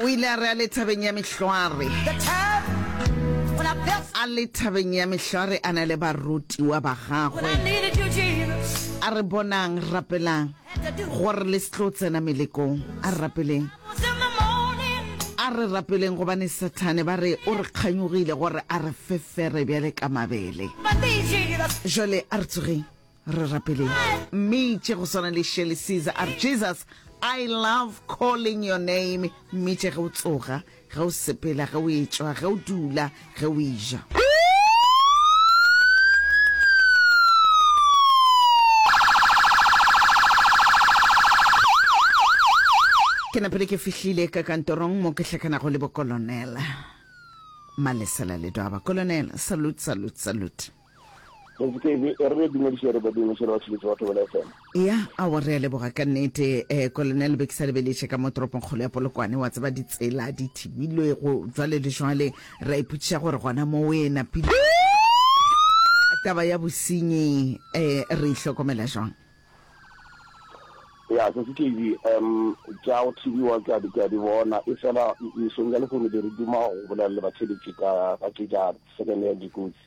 O ile a re a le thabeng ya mehlware. A le thabeng ya mehlware a na le barutiwa ba gagwe. A re bonang, rapelang gore le se tlo tsena melekong. A re rapeleng. A re rapeleng gobane Sathane ba re o re kganyogile gore a re fefere bjale ka mabele. Jwale a re tsogeng. Re rapeleng. Mmitše go swana le Shirley Caesar a re, Jesus, I love calling your name. Mmitše ge o tsoga, ge o sepela, ge o etšwa, ge o dula, ge o eja. Ke napile ke fihlile ka kantorong mo ke hlakanago le bokolonela. Malesela Ledwaba. Kolonel, salute, salute, salute. Tsetsepedi e re dumediše re badimo šele wa tšhebetšo wa Thobela FM. Eya awa re a leboga ka nnete eh Kolonel be ke sa lebeletše ka mo toropong kgolo ya Polokwane wa tseba ditsela di thibilwego jwale le jwale ra ipotšiša gore gona mo o e napile taba ya bosenyi eh re e hlokomela jwang. Ya Tsatsi TV um tša go thibiwa ke a di ke a di bona e fela mesong ya lehono be re duma go bolela le batšhebetši ka ka tše tša second hand dikotsi.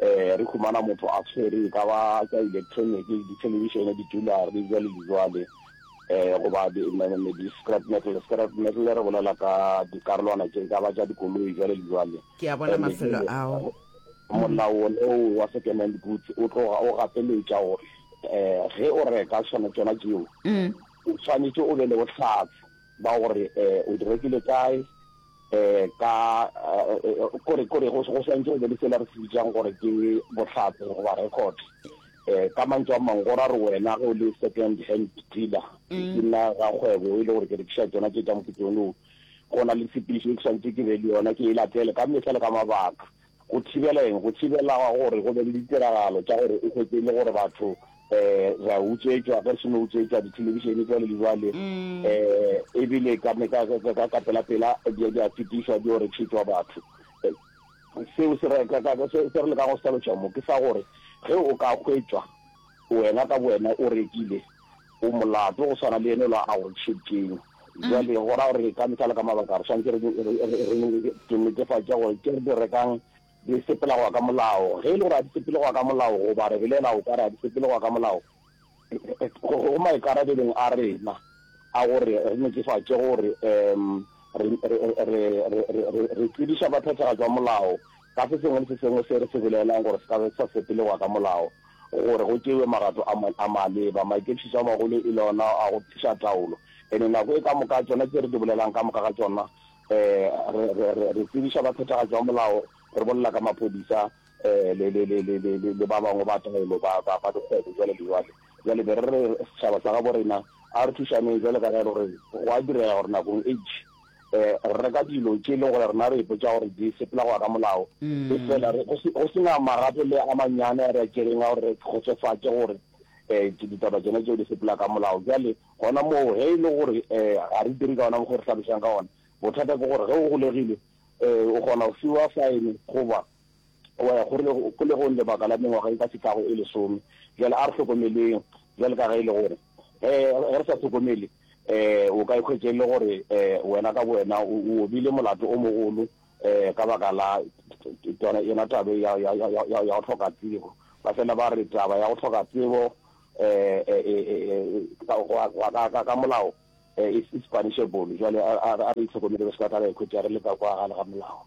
Re humana motho a tshwere e ka ba tša elektroniki, dithelebišene, ditulare, bjale le bjale, goba di-scrap metal. Scrap metal re bolela ka dikarolwana tše e ka ba tša dikoloi, bjale le bjale. Ke a bona mafelo ao. Molao wone wo wa second-hand goods o tloga o gapeletša gore ge o reka tšona tšona tšeo, o swanetše o be le bohlatse ba gore o di rekile kae, eh ka kore kore go go santse go be le sela re se bitsang gore ke botlhatse goba record eh ka mantso a mangwe go ra re wena go le second hand dealer ke nna ga kgwebo e le gore ke rekisa tsona tse tsa moketone o go na le sepiso ke santse ke be le yona ke e latele ka mehla le ka mabaka Go thibela eng? Go thibela gore go be le ditiragalo tša gore o hwetše e le gore batho um re a utswetšwa, ge re se no utswetšwa dithelebišene jwale le jwale, um ebile ka pelapela di a fetišwa di yo rekišetšwa batho. Seo se re lekago go se hlaloša mo ke sa gore ge o ka hwetšwa Wena ka bowena o rekile, o molato go swana le ene lo a go tšhekeng. Jwale go ra gore ka mehla le ka mabaka re swanetse re netefatša gore tše re di rekang di sepela go ya ka molao. Ge e le gore ga di sepele go ya ka molao goba re belaela o ka re ga di sepele go ya ka molao, go maikarabelong a rena a gore re netefatše gore re tsebiša ba phethagatši ba molao ka se sengwe le se sengwe se re se belaelang gore se ka be sa sepele go ya ka molao. gore go tšewe magato a mangwe a maleba. Maikepišišo a magolo e le ona a go tliša taolo. And nako e ka moka tšona tše re di bolelang ka moka ga tšona um re tsebiša ba phethagatšo ya molao, re bolela ka maphodisa um le ba bangwe ba taolo ba dikgwebo jwale le jwale. Jwale be re re setšhaba sa gabo rena a re thušaneng jwale ka ge e le gore go a direga gore nakong e itši re reka dilo tše e leng gore rena re ipotsa gore di sepela go ya ka molao e fela go sena marapo le a manyane a re a tšereng a gore re kgotsofatse gore um ditaba tsone tseo di sepela ka molao jale gona moo ge e le gore um ga re dire ka ona mokgwa re tlhalosang ka ona bothata ke gore ge o golegile um o kgona go fiwa fine goba Wa ya kgolegong lebaka la mengwaga e ka se tlago e lesome. Bjale a re hlokomeleng, bjale ka ge e le gore ge re sa hlokomele, o ka ikhwetša e le gore wena ka bowena o obile molato o mogolo ka baka la yona taba ya go hloka tsebo. Ba fela ba re taba ya go hloka tsebo ka molao is punishable. Bjale a re itlhokomele re se ka tla ra ikhwetša re le ka kwa gare ga molao.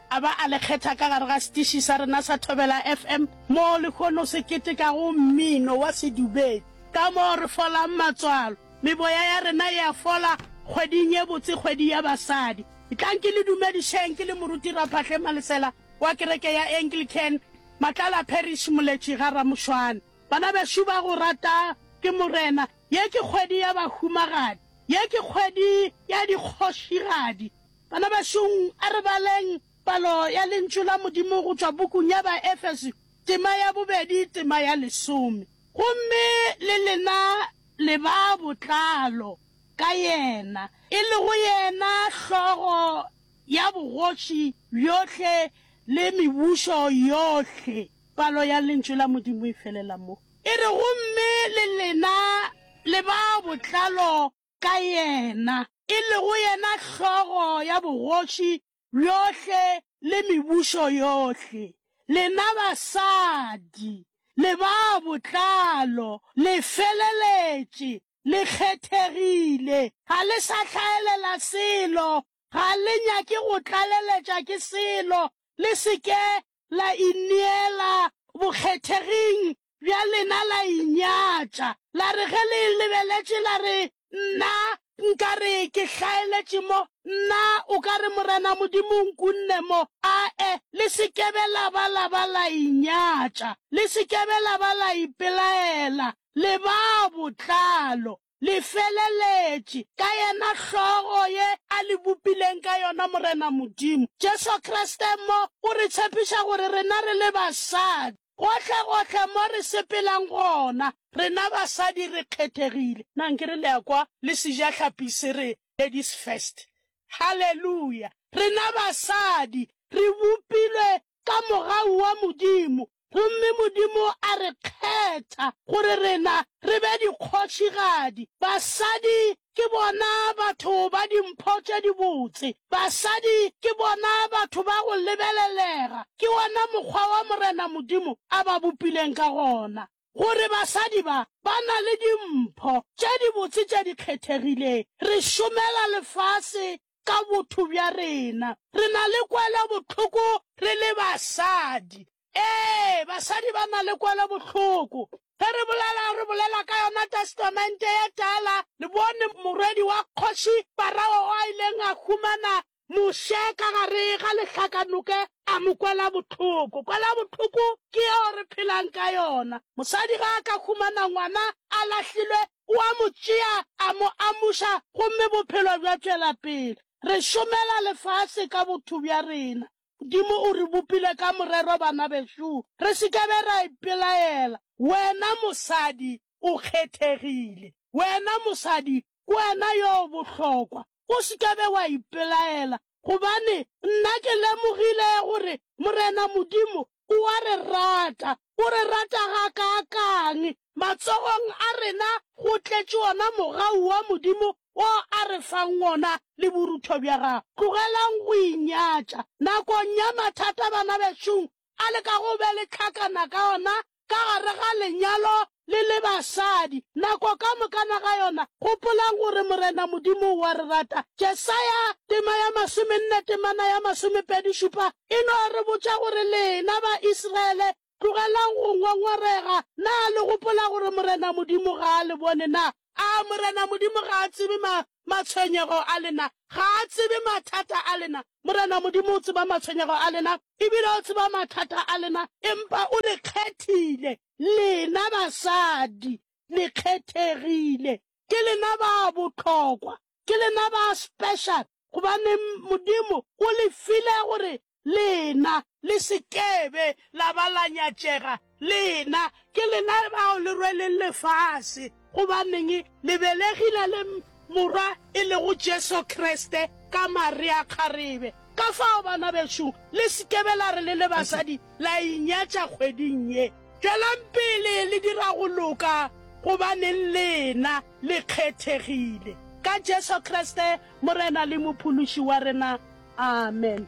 A ba a le kgetha ka gare ga setiši sa rena sa Thobela FM, moo lehono se ketekago mmino wa sedumedi, ka moo re folang matswalo. Meboya ya rena e a fola kgweding ye botse, kgwedi ya basadi. Tlang ke le dumedišeng, ke le moruti Raphahle Malesela wa kereke ya Anglican, Matlala Parish, Moletši ga Ramošwana. Bana bešo ba go rata ke Morena, ye ke kgwedi ya bahumagadi, ye ke kgwedi ya dikgošigadi. Bana bašong, a re baleng palo ya Lentšu la Modimo go tšwa bukung ya Baefeso, tema ya bobedi, tema ya lesome. Gomme le lena le ba botlalo ka Yena, e lego Yena Hlogo ya bogoši bjohle le mebušo yohle. Palo ya Lentšu la Modimo e felela mo. E re, Gomme le lena le ba botlalo. ka yena, e lego yena hlogo ya bogoši bjohle le mebušo yohle, lena basadi, le ba botlalo, le feleletše, le kgethegile, ga le sa hlaelela selo, ga le nyake go tlaleletša ke selo, le se ke la ineela bokgetheging bja lena la inyatša, la re ge le lebeletše la re, Nna nka re ke hlaeletše mo, nna o ka re Morena Modimo o nkunne mo. Ae, le se ke be la ba la ba la inyatša, le se ke be la ba la ipelaela, le ba botlalo. le feleletše, ka yena Hlogo ye a le bopileng ka yona, Morena Modimo. Jesu Kriste mo o re tshepiša gore rena re le basadi, gohlegohle mo re sepelang gona, rena basadi re kgethegile. Na nke re le a kwa le sejahlapi se re, Ladies First? Haleluya! Rena basadi re bopilwe ka mogau wa Modimo, Gomme Modimo a re kgetha, gore rena re be dikgošigadi. Basadi ke bona batho ba dimpho tše dibotse. Basadi ke bona batho ba go lebelelega. Ke wona mokgwa wa Morena Modimo a ba bopileng ka gona, gore basadi ba, ba na le dimpho tše dibotse tše di kgethegileng. Re šomela lefase ka botho bja rena. Re na le kwelobohloko re le basadi. Ee, basadi ba na le kwelobohloko. Ge re bolela, re bolela ka yona Testamente ye Tala. Le bone morwedi wa Kgoši Parao o a ileng a humana Moshe ka gare ga lehlakanoke, a mo kwela bohloko. Kwelobohloko ke yeo re phelang ka yona. Mosadi ge a ka humana ngwana a lahlilwe, o a mo tšea, a mo amuša, gomme bophelo bja tšwela pele. Re šomela lefase ka botho bja rena. Modimo o re bopile ka morero, banabešo. Re se ke be ra ipelaela. Wena mosadi, o kgethegile. Wena mosadi, ke wena yo o bohlokwa. O se ke be wa ipelaela. gobane nna ke lemogile gore Morena Modimo o a re rata. O re rata ga kaakang! Matsogong a rena go tletše wona mogau wa Modimo wo a re fang wona le borutho bja gagwe. Tlogelang go inyatša. Nakong ya mathata, bana bešong, a leka go be le tlhakana ka ona ka gare ga lenyalo le le basadi. Nako ka mokana ga yona, gopolang gore Morena Modimo o a re rata. Jesaya, tema ya masomenne temana ya masomepedi šupa, e no re botša gore, Lena Ba-Israele, tlogelang go ngwangwarega. Na le gopola gore Morena Modimo ga a le bone na? A Morena Modimo ga a tsebe ma, matshwenyego a lena? Ga a tsebe mathata a lena? Morena Modimo o tseba matshwenyego a lena, e bile o tseba mathata a lena, empa o le kgethile, lena basadi, le kgethegile. Ke lena ba bohlokwa, Ke lena ba special gobane Modimo o le file gore lena le se kebe la ba la nyatšega. Lena ke lena bao le rweleng lefase. Gobaneng? Le belegile le Morwa e lego Jesu Kriste ka mare a kgarebe. Ka fao, bana bešo, le se kebe la re le le basadi la inyatša kgweding ye. Tšwelang pele le dira go loka gobaneng lena le kgethegile. Ka Jesu Kriste Morena le Mophološi wa rena. Amen.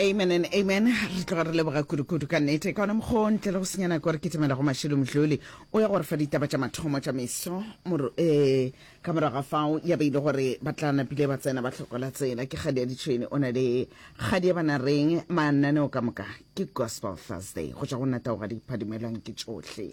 Amen and amen. Re tloga re leboga kudu-kudu ka nnete. Ka ona mokgwa o ntle le go senya nako re kitimela go Mashilo Mdluli o ya gore fa ditaba tša mathomo tša meso moro eh ka morago ga fao ya beile gore ba tla napile ba tsena ba tlhokola tsela ke kgadi ya ditšhweni o na le kgadi ya bana reng mananeo ka moka ke gospel thursday go tšwa go nna taoga di phadimelwang ke tšohle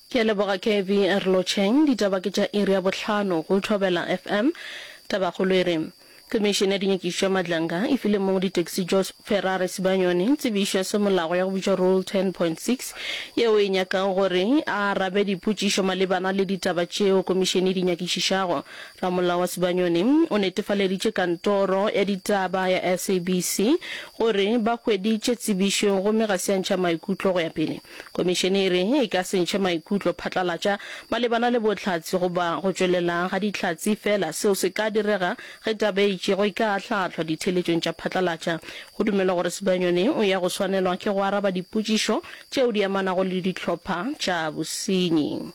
Ke a leboga Kevy Rlocheng. Ditaba ke tša iri ya bohlano go Thobela FM. Tabakgolo e re, Komišene ya Dinyakišo tša Madlanga e file mong ditaxi Jos Ferrari Sibanyoni tsebišo ya semolao ya go bitšwa Rule 10.6 yeo e nyakago gore a arabe dipotšišo malebana le ditaba tšeo komišene e di nyakišišago. Ramolao wa Sibanyoni o netefaleditše kantoro ya ditaba ya SABC gore ba hweditše tsebišo gomme ga se a ntšha maikutlo go ya pele. Komišene e re e ka se ntšhe maikutlo phatlalatša malebana le bohlatse goba go tšwelela ga dihlatse fela seo se ka direga ge taba e itšego e ka ahlahlwa ditheeletšong tša phatlalatša. Go dumelwa gore Sibanyoni o ya go swanelwa ke go araba dipotšišo tšeo di amanago le dihlopha tša bosenyi.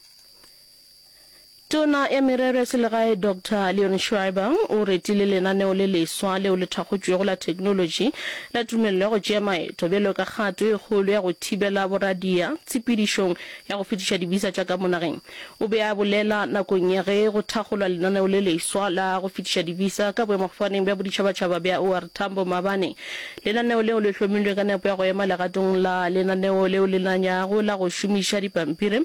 Tona ya Merero ya Selegae Doctor Leon Schreiber o retile lenaneo le leswa leo le thakgotšwego la theknolotši la tumello ya go tšea maeto bjalo ka kgato e kgolo ya go thibela boradia tshepedišong ya go fetiša dibisa tša ka mo nageng. O be a bolela nakong ya ge go thakgolwa lenaneo le leswa la go fetiša dibisa ka boemafofaneng bja boditšhabatšhaba bja OR Tambo maabane. Lenaneo leo le hlomilwe ka nepo ya go ema legatong la lenaneo leo le nanyago la go šomiša dipampiri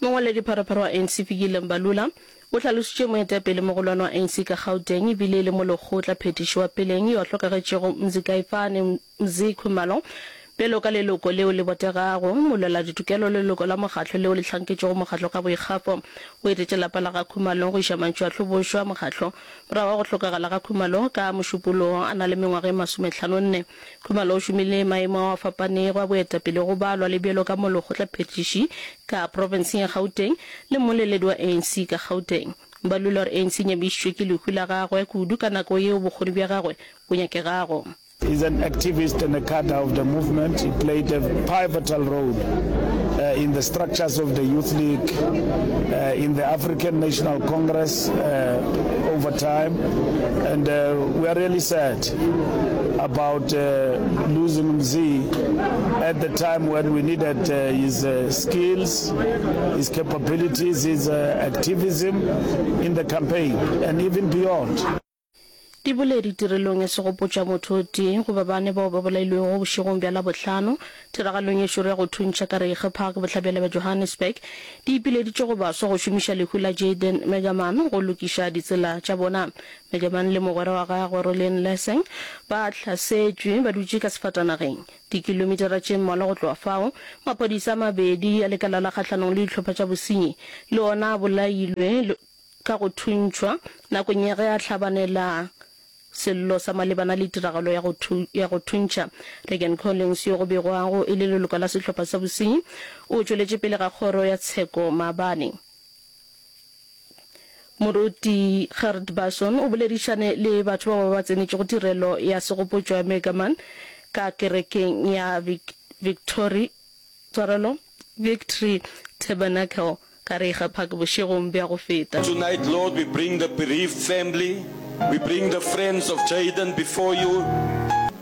Mongwaledipharopharo wa ANC Fikile Mbalula o hlalošitše moetapele mogolwane wa ANC ka Gauteng e bile e le molekgotla phethiši wa peleng yo a hlokagetšego Mzikaifane Mzi Khumalo bjalo ka leloko leo le botegago, molweladitukelo le leloko la mokgatlo leo le hlanketšego mokgatlo ka boikgafo. O etetše lapa la ga Khumalo go iša mantšu a hlobošwa mokgatlo morago ga go hlokagala ga Khumalo ka Mošupologo a na le mengwaga e masomethlanonne. Khumalo o šomile maemo ao a fapanego a boetapele go balwa le bjalo ka molokgotlaphethiši ka profenseng ya Gauteng le mmoleledi wa ANC ka Gauteng. Ba lula gore ANC e nyabišitšwe ke lehu la gagwe kudu ka nako yeo bokgoni bja gagwe bo nyakegago. He is an activist and a cadre of the movement. He played a pivotal role in the structures of the Youth League, in the African National Congress over time and we are really sad. about uh, losing Mzee at the time when we needed uh, his uh, skills, his capabilities, his uh, activism in the campaign and even beyond. di bole ditirelong e se go potša motho o tee goba bane bao ba bolailwego bošegong bja labohlano tiragalong ye šoro ya go thuntšha ka reige park bohlabela bja johannesburg di ipileditše go baswa go šomiša lehu la jaden megaman go lokiša ditsela tša bona Legebang le mogwera wa gagwe Rolene Leseng ba hlasetšwe ba dutše ka sefatanageng. Dikilomitara tše mmalwa go tloga fao, maphodisa a mabedi a lekala la kgahlanong le dihlopha tša bosenyi le ona a bolailwe ka go thuntšhwa nakong ya ge a hlabanela sello sa malebana le tiragalo ya go, ya go thuntšha. Regan Collins, yo go begwago e le leloko la sehlopha sa bosenyi, o tšweletše pele ga kgoro ya tsheko maabane. Moruti Gert Basson o boledišane le batho ba ba ba tsenetšego tirelo ya segopotšo ya Megaman ka kerekeng ya Victory Tshwarelo Victory Tabernacle ka Reiger Park bošegong bja go feta. Tonight, Lord, we bring the bereaved family, we bring the friends of Jayden before you.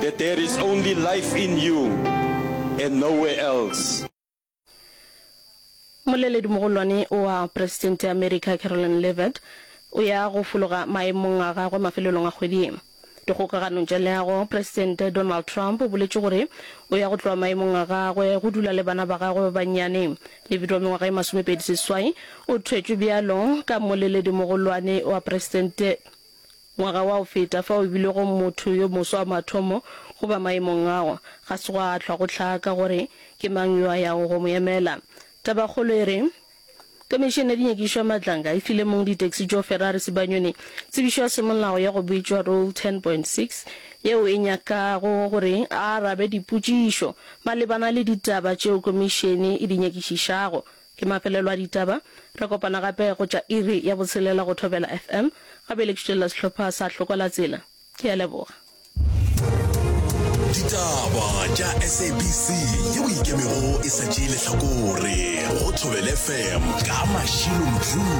that there is only life in you and nowhere else. Moleledimogolwane wa Presidente ya Amerika Carolyn Leavitt o ya go fologa maemong a gagwe mafelelong a kgwedi ye. Dikgokaganong tša leago, Presidente Donald Trump o boletše gore o ya go tloga maemong a gagwe go dula le bana ba gagwe ba bannyane. Leavitt wa mengwaga e masomepedi seswai o thwetšwe bjalo ka moleledimogolwane wa Presidente. Ngwaga wa go feta fa o bilego motho yo moswa wa mathomo go ba maemong ao, ga se gwa hlwa go hlaka gore ke mang yo a yago go mo emela. Tabakgolo e re, Komišene ya Dinyakišo ya Matlanga e file mong ditaxi tšo Ferrari Sibanyoni tsebišo ya semolao ya go bitšwa Rule 10.6 yeo e nyakago gore a arabe dipotšišo malebana le ditaba tšeo komišene e di nyakišišago. Ke mafelelo a ditaba. Re kopana gape go tša iri ya botshelela go Thobela FM. Gape le tšhutšelela sehlopha sa Hlokwalatsela. Ke a leboga. Ditaba tša SABC ye o ikemego e sa tšee lehlakore go Thobela FM ka Mashilo Mthuli.